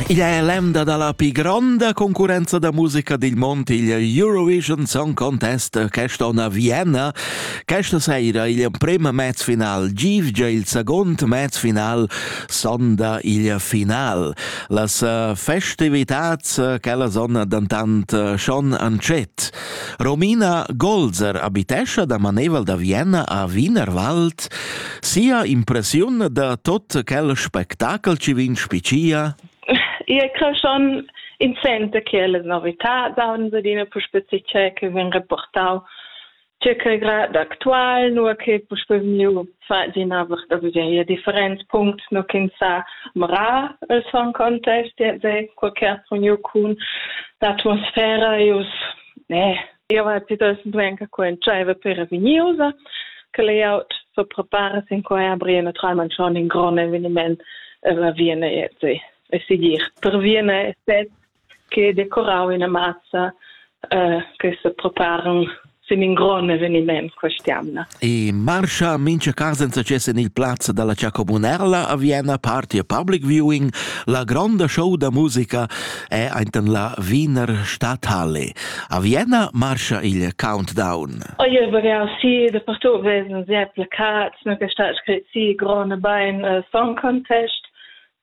Igl è l'emda da la pi gronda concurrenza da musica dil mond, il Eurovision Song Contest, questa on a Vienna. Questa sera igl emprem mezfinal givgia il second mezfinal sonda il final. Las eh, festivitats, eh, quellas on dentant eh, schon antschet. Romina Golzer abitescha da manevel da Vienna a Wienerwald. Sia impressiun da tot quel spectacel ci vin spicia? Ia cre schon in sente che le novità da unsedina puspe si che vin reportau ce che grad actual, nur che puspe miu fa d'ina da veglia different punct no kin sa mra el son contest de de qualche pugno kun l'atmosfera e us ne io va ti das venga con chaiva per viniosa che layout so prepara sin qua abri na tra man schon in grone evenement la viene jetzt e sigir per viene set che decorau ina mazza eh, che sepreparen sin in grond eveniment quest'jamna. E marscha mincha cas en success en il plazza dalla Cia Comunella a Vienna Party a Public Viewing la gronda show da musica è enten la Wiener Stadthalle. A Vienna marscha il countdown. Oh, io vorrei sì, da partout wesen sehr plakats, mir gestaltet si grone Bein uh, Song Contest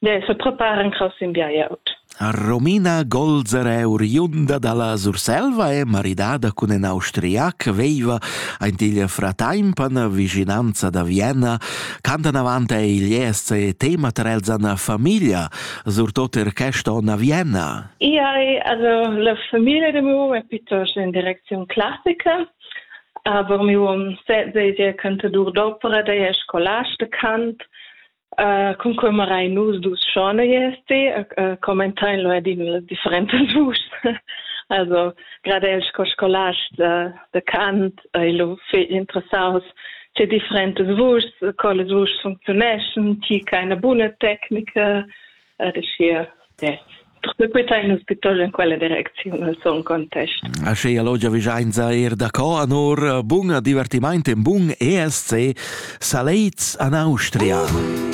Ne se prepara incras in biajaut. Romina Golzer è oriunda dalla Surselva e maridada cun in Austriac, veiva aint igl fratempan vicinanza da Vienna, cantan avant igl ESC tema ter els an famiglia, surtot er quest on a Vienna. Ia è also la famiglia de mu è piuttosto in direczione classica, aber mi um sehe cantador d'opera, der è scolast de cant, Cun quei marein nus dus schorneiers ti commentein lu ed in las differentas vuschs. Also gerade el sco scolast de, de cant ei lu fetg interessaus che differentas vuschs, co las vuschs funzioneschan, ti che eine buna Techniker, uschia sequità in ospital en quella direcziun al son contest. Aschia lo giavischainza er da co anor bun divertimaint in bun ESC Saleits an Austria.